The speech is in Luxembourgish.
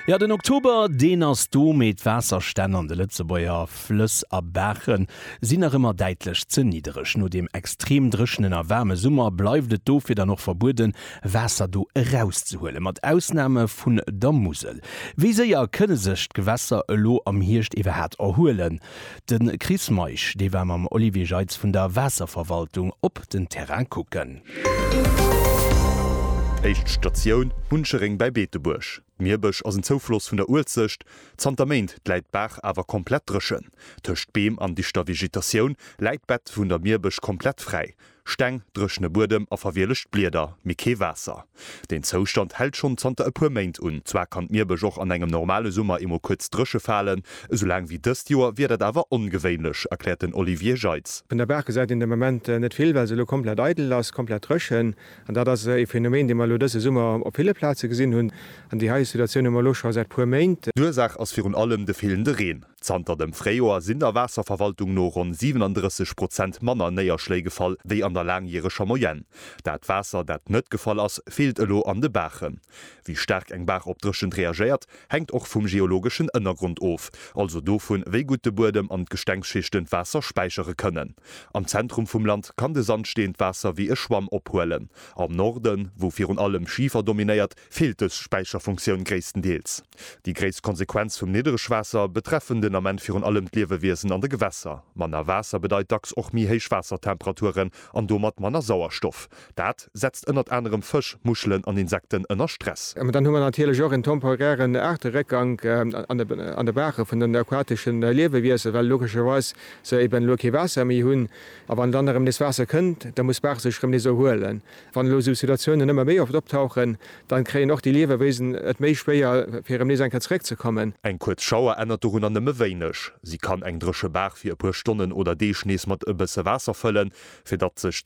Jo, den Oktober, deen ass do, mee d'Waasserstänn an de Lëtzebuerger Flëss a Baache sinn nach ëmmer däitlech ze niddereg. No deem extrem dréchenen a waarme Summer bleift et dofir dann och verbueden, Waasser do erauszehuelen, mat Ausname vun der Musel. Wéi séier kënne sech d'Gewässer elo am Hierscht iwwerhaat erhuelen? De Chris Meisch, dee war mam Olivier Jeitz vun der Waasserverwaltung op den Terrain kucken. Éischt Statioun, Huncheréng bäi Beetebuerg. D'Mierbësch ass en Zoufloss vun der Uelzecht. Zanter Méint läit d'Baach awer komplett dréchen. Tëscht Beem an dichter Vegetatioun läit d'Bett vun der Mierbësch komplett fräi. Steng, dréchene Buedem a verwielegt Blieder, mee kee Waasser. Deen Zoustand hält schonn zanter e puer Méint un. Zwar kann d'Mierbësch och an engem normale Summer emol kuerz dréche falen, esou laang wéi dëst Joer wier dat awer ongewéinlech, erkläert den Olivier Jeitz. Vun der Baach gesäit een de Moment net vill, well se elo komplett eidel ass, komplett dréchen. An dat ass e Phänomen, dee mer elo dëse Summer op ville Plaze gesinn hunn. An déi hei Situatioun hu mer elo scho säit puer Méint. D'Ursaach ass virun allem de feelende Reen. Zanter dem Fréijoer sinn der Waasserverwaltung no ronn 37 Prozent manner Néierschléi gefall wéi an der laangjäreger Moyenne. Dat Waasser, dat net gefall ass, feelt elo an de Baachen. Wéi staark eng Baach op Dréchent reagéiert, hänkt och vum geologeschen Ënnergrond of, also dovun, wéi gutt de Buedem an d'Gestengsschichten d'Waasser späichere kënnen. Am Zentrum vum Land kann de Sandsteen d'Waasser wéi e Schwamm ophuelen. Am Norden, wou virun allem Schifer dominéiert, feelt dës Späicherfunktioun gréisstendeels. Déi gréisst Konsequenz vum Nidderegwaasser betreffen den Ament virun allem d'Liewewiesen an de Gewässer. Manner Waasser bedeit dacks och méi héich Waassertemperaturen an domat manner Sauerstoff. Dat setzt ënnert anerem Fësch, Muschelen an Insekten ënner Stress. Mä dann hu mer natierlech och en temporären Aarteréckgank an de Baache vun den aquatesche Liewewiesen, well logescherweis se eben elo kee Waasser méi hunn. A wann dann erëm nees Waasser kënnt, da muss d'Baach sech erëm nees erhuelen. Wann elo esou Situatiounen ëmmer méi oft optauchen, dann kréien och déi Liewewiesen et méi schwéier fir erëm nees eng Kéier zeréck ze kommen. Eng kuerz Schauer ännert dorunner nëmme wéineg. Si kann eng dréche Baach fir e puer Stonnen oder Deeg nees mat e bësse Waasser fëllen, fir datt sech